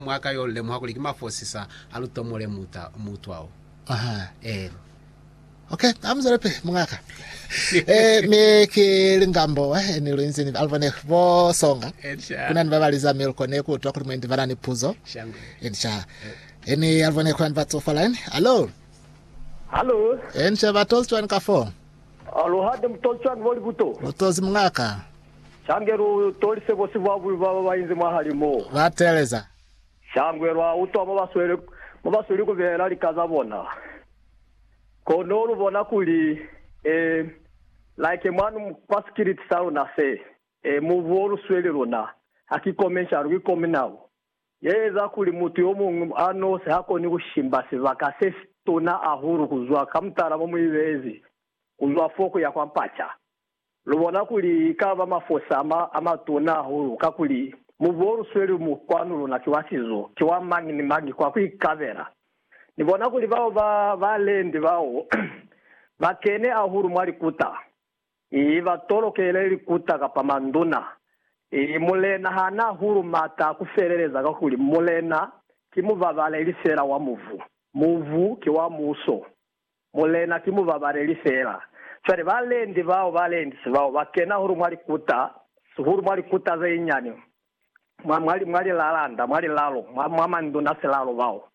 mwa ka yo lemuha kuli ki mafosisa a lutomole muta, mutwa o. Aha, eena. Ok, ha mu zwelapili, mungaka. e, mi ki lingambo eh, ni lu inzi ni Alvone bo songa. Ensha. Kuna ni ba ba liza Milko ne ku utwa kuli mwendi ba na ni puzo. Shangwe. Ensha. Eni Alvone kuna ni ba tsofa line. Hallo. Hallo. Ensha, ba tozi cwani ka foo? Aluhande mu tozi cwani mo libuto? Lu tozi mungaka. Shangwe lu tolise bosi bwa bubi bwa ba ba inzi mwahali mo. Ba teeleza. Shangwe lwa utwa mo ba sweli, mo ba sweli ku beela lika za bona. Kono lu bona kuli, eh, like mwanu kwa sikiliti sa luna se, eh, mubu wo lu sweli luna, ha ki kome cwalo, ki kome nako ye eza kuli mutu yo muñwi a nosi ha koni ku shimba sibaka se si tuna ahulu ku zwa ka mutala mo mu ibeezi, ku zwa fo ku ya kwa mpaca. Lu bona kuli i ka ba mafosi a ma, a matuna hahulu, kakuli mubu o lu sweli mu kwanu luna ki wa sizo, ki wa mañi ni mañi kwa ku ikabela. Ni bona kuli bao ba, ba lendi bao, ba kene hahulu mwa likuta. Ii, ba tolokele likuta kapa manduna. Ii, Mulena ha na hahulu mata a ku feleleza, kakuli Mulena ki mubabaleli fela wa mubu. Mubu ki wa muso. Mulena, ki mubabaleli fela. Cwale balendi bao, balendi bao, ba kena hulu mwa likuta, hulu mwa likuta ze nyani, mwa, mwa, mwa lilalanda, mwa lilalo, mwa, mwa manduna silalo bao.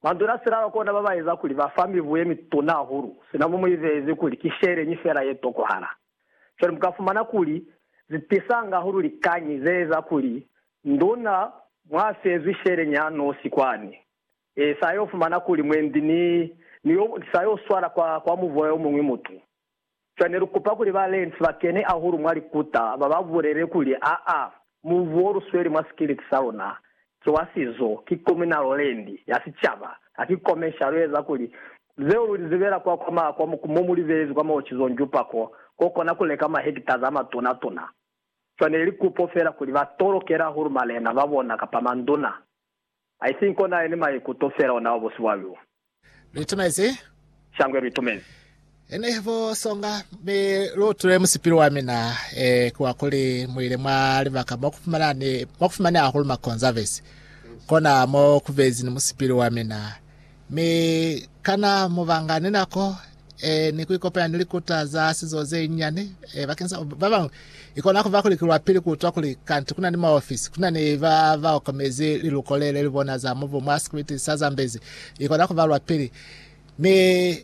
Manduna silalo kona ba ba eza kuli ba fa mibu ye mituna hahulu, sina mo mu ibezi kuli ki sheleñi fela ye tokohala. Cwale mu ka fumana kuli zi tisanga hahulu likañi ze eza kuli nduna mwa fezwi sheleñi ya nosi kwani. Ee, sa yo fumana kuli mwendi ni, ni yo, sa yo swala kwa, kwa muvoya yo muñwi mutu. Cwale ne lu kupa kuli ba Lentz ba kene ahulu mwa likuta, ba ba bulele kuli, Aa, mubu wo lu sweli mwa sikiliti sa luna, ki wa sizo, ki communal land, ya sicaba, ha ki commercial, lu eza kuli, zeo lu li zibela kwa, kwa ma, kwa mo, mo mu li beezi kwa maocizong jupa ko, ko kona ku leka ma hectares a matuna tuna. Cwale ne li kupo fela kuli ba tolokele ahulu malena ba bona kapa manduna. I think kona yene maikuto fela ona wa bosi bwa lu. Luitumezi? Shangwe luitumezi. Ene bo songa, mi lu utule musipilu wa mina, e, ki wa kuli mu ile mwa libaka mo ku fumana ni, mo ku fumane hahulu makonzavesi. Kona mo ku bezi ni musipilu wa mina. Mi kana mu banga ni nako e ni ku ikopanya ni likuta za sizo ze nyani? E, bakeng sa ba bañwi, i kona ku ba kuli ki lwa pili ku utwa kuli kanti ku na ni maofisi, ku na ni ba ba okomezi liluko le le li bona za mubu mwa sikwiti sa Zambezi. I kona ku ba lwa pili. Mi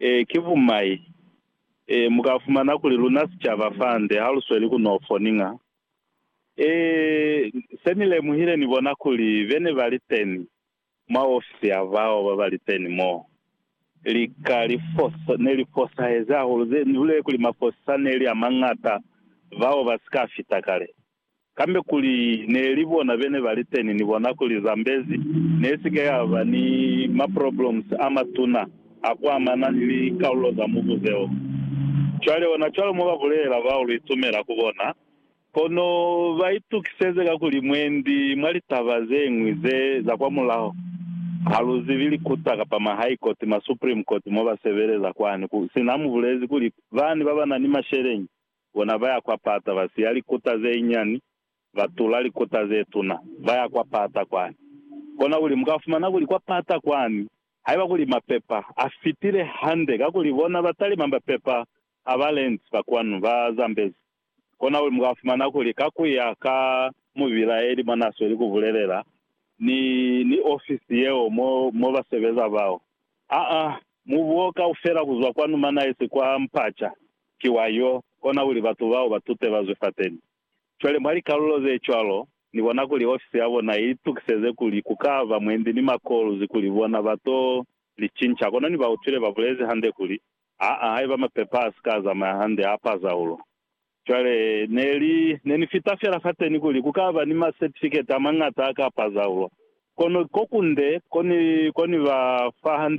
Ee, ki bumai. Ee, mu ka fumana kuli luna sicaba fande ha lu sweli ku no foninga. Ee, se ni lemuhile ni bona kuli be ne ba li teni mwa ofisi ya bao ba ba li teni mo, lika li fosa, ne li fosahezi hahulu, ze ni bulele kuli mafosisa ne li a mañata bao ba si ka fita kale. Kambe kuli neli bona bene baliteni ni bona kuli Zambezi nesike yaba ni ma problems amatuna akuamana ni likalulo za mubu zeo. Cwale ona cwalo mo babulelela bao luitumela ku bona, kono baitukiseze kakuli mwendi mwa litaba zeñwi ze za kwa mulaho haluzibi likuta kapa ma high court, ma supreme court mo basebeleza kwani, sina mubulezi kuli bani babanani masheleñi Bona ba ya kwa pata, ba siya likuta ze nyani, ba tula likuta ze tuna, ba ya kwa pata kwani. Kona kuli mu ka fumana kuli kwa pata kwani, haiba kuli mapepa a fitile hande, kakuli bona ba talima mapepa a ba lenti ba kwanu, ba Zambezi. Kona kuli mu ka fumana kuli ka ku ya ka mubilaeli mwa n'a sweli ku bulelela, ni, ni ofisi yeo mo, mo ba sebeza bao. Aa, mubuo kaufela ku zwa kwanu manaisi kwa mpaca, Ki wa yo kona kuli batu bao ba tute ba zwe fateni. Cwale mwa likalulo ze cwalo, ni bona kuli ofisi ya bona i itukiseze kuli ku ka ba mwendi ni makoluzi kuli bona ba to li cinca. Kono ni ba utwile ba bulezi hande kuli, Aa, haiba mapepa a si ka zamaya hande a pa zaulo. Cwale, ne li, ne ni fita fela fateni kuli ku ka ba ni masertifiketi a mañata a ka pa zaulo. Kono ko kunde ko ni, ko ni ba fa 100.